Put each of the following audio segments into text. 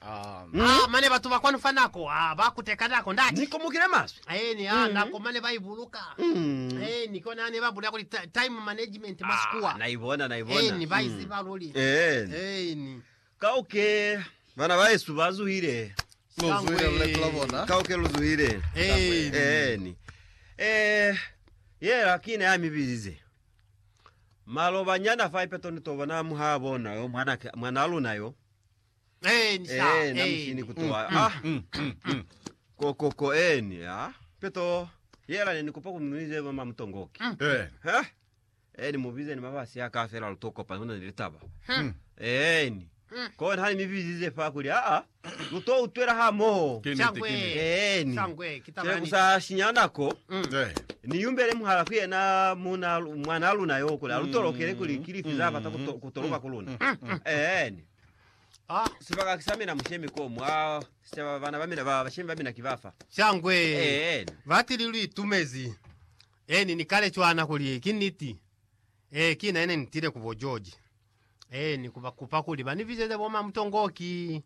Aa, mane batu ba kwanu fa nako, aa, ba kuteka nako, ndati. Ni komokile maswe. Aeni, aa, nako mane ba ibuluka. Aeni, kona hane ba bulela kuli ta, time management mwa Sikuwa. Aa, na ibona, na ibona. Aeni, ba iziba luli. Aeni. Aeni. Kauke, bana bahesu ba zuhile. Lu zuhile luletu la bona. Kauke lu zuhile. Aeni. Aeni. Eh, yela kine ya mibilize. Maloba nyana fa ipeto ni to bona muha bona yo mwana, mwana luna yo. Ee, na mushini ku toa. Ah, ko, ko, ko, eni, ha? Peto, yela ne ni kopa ku mnuize mama mutongoki. Eh, Ha? Eni, mubize ni mabasi ya ka fela luto kopa, huna ni litaba. Eni, kona hani mibizize fa kuli, a a, luto utwela ha moho. ke nete, Shangwe. ke nete. Eni, Shangwe, ki taba chele ya niti. kusa shinya nako, Eh, ni yumbele muhala ku yena muna, mwana luna yo kuli, alutolokele kuli kilifi za bata kuto, kutoloka ku luna. Eni, Ah, Sibaka sa mina mushemi ko mwa sicaba bana ba mina ba bashemi ba mina ki bafa. shangwe. Eh. Batili lu itumezi. Eh, ni ni kale cwana kuli ki niti. Eh, ki na ne ni tile ku bo George. Eh, ni kuba kupa kuli ba ni bizeze bo mamutongo ki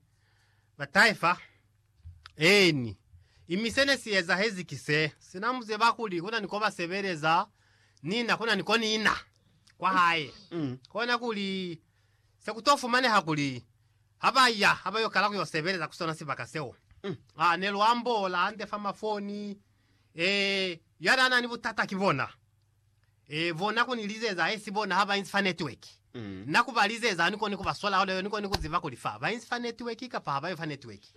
ba taifa. Eh, ni. Imi se ne si ezahezi ki se. Sina mu zeba kuli kuna ni ko ba sebeleza, nina kuna ni ko nina kwa hae. Mm. Kona kuli Se ku to fumaneha kuli, ha ba ya, ha ba yo kala ku yo sebeleza ku sona sibaka seo. Aa, ne lu ambola hande fa mafoni. Ee, ya n'a na ni butata ki bona. Ee, bona ku ni lizeza, haisi bona ha ba inzi fa netiweki. Na ku ba lizeza, ha ni koni ku ba sola hona yo, ni koni ku ziba kuli fa ba inzi fa netiweki kapa ha ba yo fa netiweki.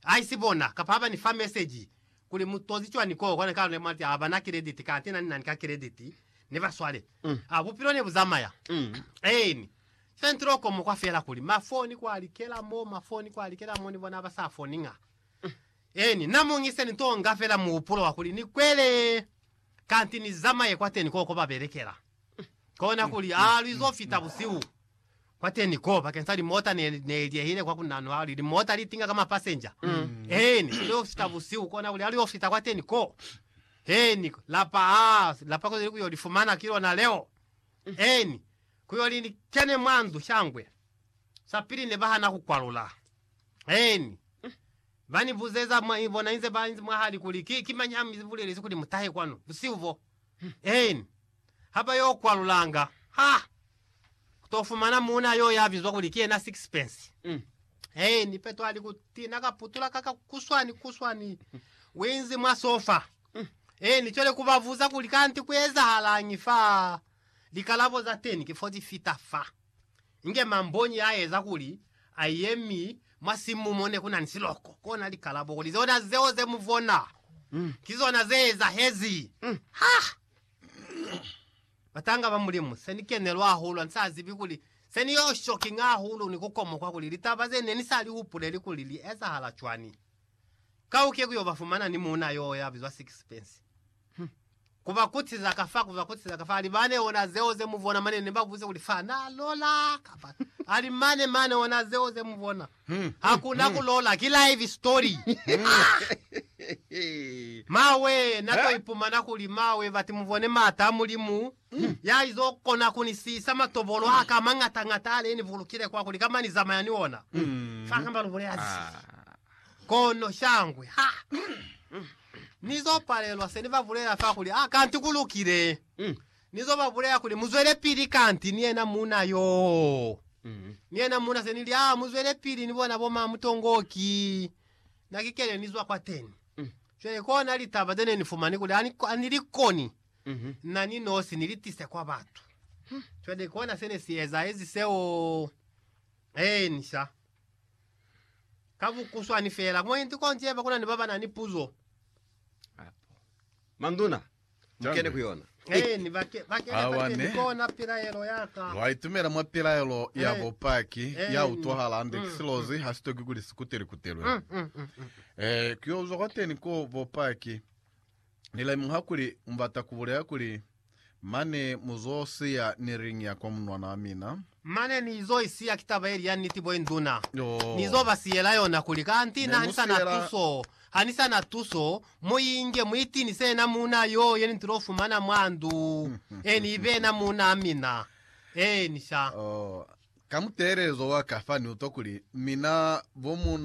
Haisi bona, kapa ha ba ni fa meseji, Kuli mu tozi cwani ko kona ka luna mati haba na kilediti kate nani nani ka kilediti ne ba swale a bupilo ne bu zamaya eeni central ko mukwa fela kuli ma foni kwa likela mo ma foni kwa likela mo ni bona haba sa foni nga eeni na mu ngise ni to nga fela muhupulo wa kuli ni kwele kanti ni zamaye kwateni ko ko ba belekela kona kuli a lwi zo fita busihu Kwateni ko bakeng sa limota ne li liehile kwa ku nano hali limota li tinga ka mapasenja. He ni sile ufita busihu kona kuli hali ofita kwateni ko, he ni lapa ha lapa kuzeli ku yo li fumana ki lona leo. He ni ku yo li kene mwa ndu shangwe. Sapili ne ba hana ku kwalula. He ni ba ni buzeza mwa bona inze ba inzi mwa hali kuli, Ki, ki mañi ha mi bulelezi kuli mutahe kwanu busihu bo? He ni. ha ba yo kwalulanga, ha ku to fumana muuna yo ya bizwa kuli ki yena Sixpence. Hei, ni Peto a li ku tina ka putula ka kakuswani kuswani winzi mwa sofa. Hei, ni cwele ku ba buza kuli kanti ku ezahalañi fa likalabo za teni ki fo li fita fa. Inge mambonyi ya eza kuli a yemi mwa simu mo ne ku na ni siloko, kona likalabo kuli zona zeo ze mu bona ki zona ze ezahezi. Ha! Batanga ba Mulimu, se ni kenelwa hahulu, ha ni sa zibi kuli se ni yo shocking hahulu ni ku komokwa kuli litaba ze ne ni sa li hupuleli kuli li ezahala cwani. Kauke ku yo ba fumana ni muuna yo ya bizwa Sixpence. Hum. Ku ba kutiza ka fa, ku ba kutiza ka fa, a li, Mane ona zeo ze mu bona, mane ne ba buze kuli fa na lola, kapa, a li, Mane, mane ona zeo ze mu bona. Hakuna ku lola, ki live story. Mawe, na to ipumana kuli mawe bati mubone maata a Mulimu ya izo kona ku ni siisa matobolo a ka a mañata ñata ale ni bulukile kwa kuli kamba ni zamaya ni ona fa kamba lu bulela ze. Kono shangwe, ha ni zo palelwa se ni ba bulela fa kuli, Ah, kanti ku lukile. Ni zo ba bulela kuli, Muzwelepili kanti ni yena muuna yoo. Ni yena muuna se ni li, Aa, muzwelepili ni bona bo maa mutongo o ki na ki kene ni zwa kwateni. Cwale kona litaba ze ne ni fumani kuli ha ni, ha ni li koni na ni nosi ni li tise kwa batu. Cwale kona se ne si ezahezi seo. Eeni, sha. Ka bukuswani feela. Mwendi konji yeba kuna ni ba ba na ni puzo. Manduna, mukene ku yona. Awane, lwa itumela mwa pilaelo ya bupaki ya utwahala hande ki silozi, ha si toki kuli si kutelikutelwe. Ee, ku yo uzwa kwateni ko bupaki. Ni lemuha kuli mu bata ku bulela kuli, Mane mu zo siya ni ring ya kwa munwana wa mina. Mane ni izo isiya ki taba yeli ya niti bo induna. Ni izo ba siyela yona kuli, Kanti na ha ni sa na tuso, ha ni sa na tuso, mu inge, mu itinise yena muuna yo ye ni tilo fumana mwa ndu, eni ibe yena muunaa mina. Eeni, sha. Ka mutelezo wa ka fa ni utwa kuli, Mina, bo muuna